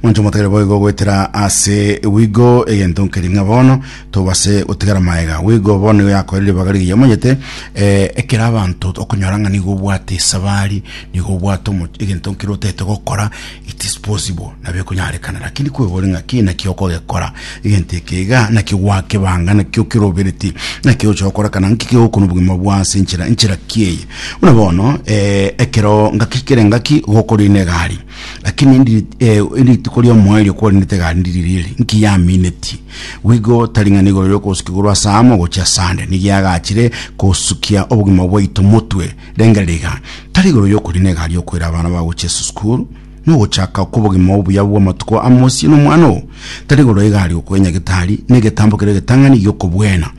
Monto motagere boigo goetera ase wigo egento nkeri ng'a bono tobase gotigara maega. Wigo bono nigo yakoire ribaga rigiya omanyete eh, ekero abanto okonyora ng'a nigo obwate esabari nigo obwate omo- egento nkere otagete gokora it is possible nabo ekonyarekana lakini kwebore ng'a ki naki okogekora egento eke iga naki gwakebanga naki okeroberetie naki ogocha gokora kana nki kegokona obogima bwo ase enchera enchera ki eye buna bono ekero ngaki kere ngaki gokora ine egari Lakini ndiri eh, erituko ri'omoerio kwarendete gandi ririri, nki yaminetie? Bw'igo taring'ana igoro ri'okosuka igoro ase amo gochia Sande, nigo agachire kosukia obogima bwaito motwe. Rengereria iga, tari igoro y'okogenda na egari y'okoira abana bao gochia ase esukuru, na ogochaka kw'obogima obuya bw'amatuko amo ase nomwano oo, tari igoro y'egari y'okoira nyagetari, na egetambo keria egetang'ani gi'okobwena.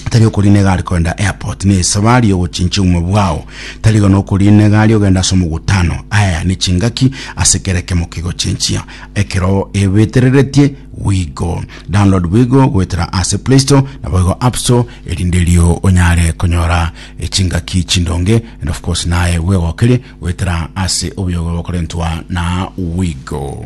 tari okoriinega are korenda airport ne esabari yogochinchia obogima bwao tari iga nokoriinega aria ogenda ase omogutano aya ne chingaki ase kera ekemo kegochinchia ekero ebetereretie wigo download bwigo goetera ase play store na boigo app store erinde erio onyare konyora echingaki chindonge and of course naye bwegokerie goetera ase obuyogo bokorentwa na wigo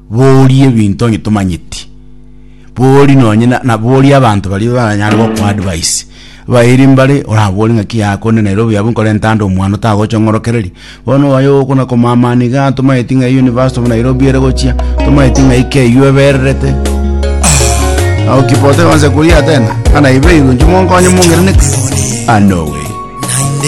Boria ebinto onye tomanyeti. Boria nonye na- na boria abanto baria baranyare gokwa advice. Bairi mbare orabore ng'aki yaya konde nere obuya abwo nkorente ande omwana otagocha ong'orokereria. Bono oyo oyo okona komamani igaa tomanyeti ng'a eyio University of Nairobi ere gochia, tomanyeti ng'ai ki eyio ebererete. Ao Kibondo akansa koria tena, ng'a naibeirwe inche monkonye mongenene ki? Ah no way.